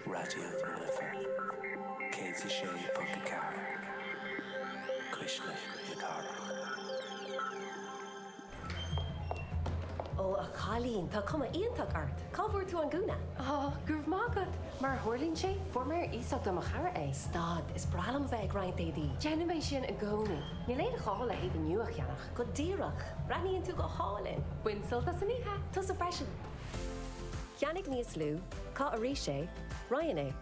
Raidió na Life 106.4, Cuisle na Cathrach. Ó a chailín, tá cuma iontach ort! Cá bhfuair tú an gúna? Ó, go raibh maith agat! Mar a tharlaíonn sé, fuair mé ar iasacht ó mo chara é. Stad, is breá liom a bheith ag roinnt éadaí! Déanaim é sin i gcónaí. Níl aon ghá le héadaí nua a cheannach. Go díreach! Breathnaíonn tú go hálainn! Bain sult as an oíche! Tusa freisin! Ceannaigh níos lú, caith arís é, Roinn é.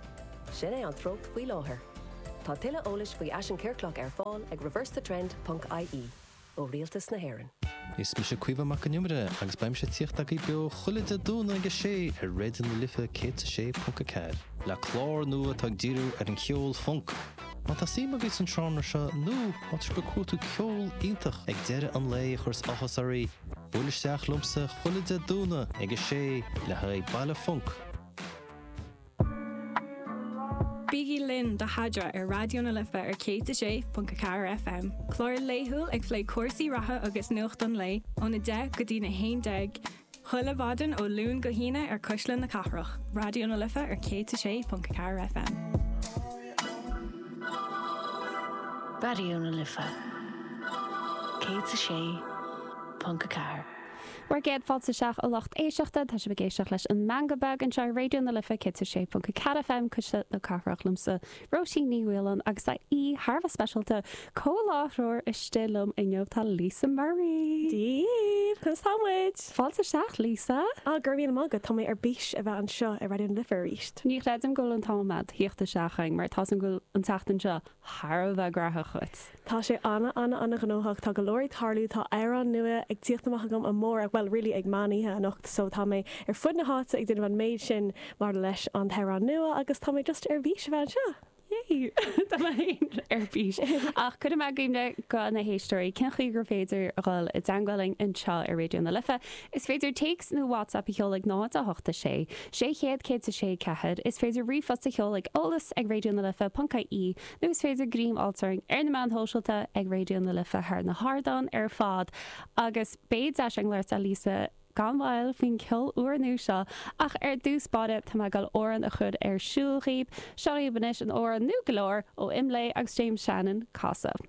Sin é an treocht faoi láthair. Tá tuilleadh eolais faoi Fhaisean Ciorclach ar fáil ag reversethetrend ponc ie. ó Rialtas na hÉireann. Is mise Caoimhe Mac an Iomaire agus beimse ag tíocht agaibh beo chuile Dé Domhnaigh ag a sé ar Raidió na Life 106.4 le clár nua atá ag díriú ar an cheol func. Má tá suim agaibh sa seánra seo nó má tá groove uait nó ceol iontach ag deireadh an lae a chuireas áthas oraibh, buail isteach liomsa chuile Dé Domhnaigh ag a sé le haghaidh Baile Func. Bígí linn do Sheadra ar Raidió na Life ar 106.4 FM, clár laethúil ag plé cúrsaí reatha agus nuacht an lae óna deich go dtí a haon déag, Chuile mhaidin ó Luan go hAoine ar Cuisle na Cathrach, Raidió na Life ar 106.4 FM. Raidió na Life 106.4. Bhur gcéad fáilte isteach a lucht éisteachta, tá sibh ag éisteacht leis an Meangadh Beag anseo ar Raidió na Life 106.4 FM, Cuisle na Cathrach, liomsa, Róisín Ní Mhaoláin agus tá aoi thar a bheith speisialta, comhláithreoir istigh liom inniu, tá Lisa Murray. Dia! Conas tá muid? Fáilte isteach, Lisa! Ah, go raibh míle maith agat, tá mé ar bís a bheith anseo i Raidió na Life arís. Ní chreidim go bhfuil an t-am a'd a thíocht isteach chugainn mar tá a fhios agam go bhfuil an tseachtain seo thar a bheith graitheach dhuit. Tá sé an- an- an-ghnóthach, tá go leor ag tarlúint, tá amhrán nua ag tíocht amach agam amárach, bhuel really ag meán oíche anocht so tá mé ar fud na háite ag déanamh an méid sin maidir leis an t-amhrán nua agus tá mé just ar bís a bheith anseo. Yay! Tá mé féin ar bís. Ach cuirim i gcuimhne do na héisteoirí cén chaoi gur féidir a dhul i dteangmháil linn anseo ar Raidió na Life. Is féidir téacs nó WhatsApp a sheoladh ag 0 8 6 600 106 4. Is féidir ríomhphost a sheoladh ag eolas ag raidio na life ponc ie. nó is féidir greim a fháil orainn ar na meáin shóisialta ag Raidió na Life thar na hardáin ar fad agus beidh deis againn labhairt le Lisa gan mhoill faoin gceol úrnua seo ach ar dtús báire tá mé ag dul amhrán a chur ar siúl dhaoib, seo dhaoib anois an t-amhrán nua go leor ó Imlé agus James Shannon, Casadh.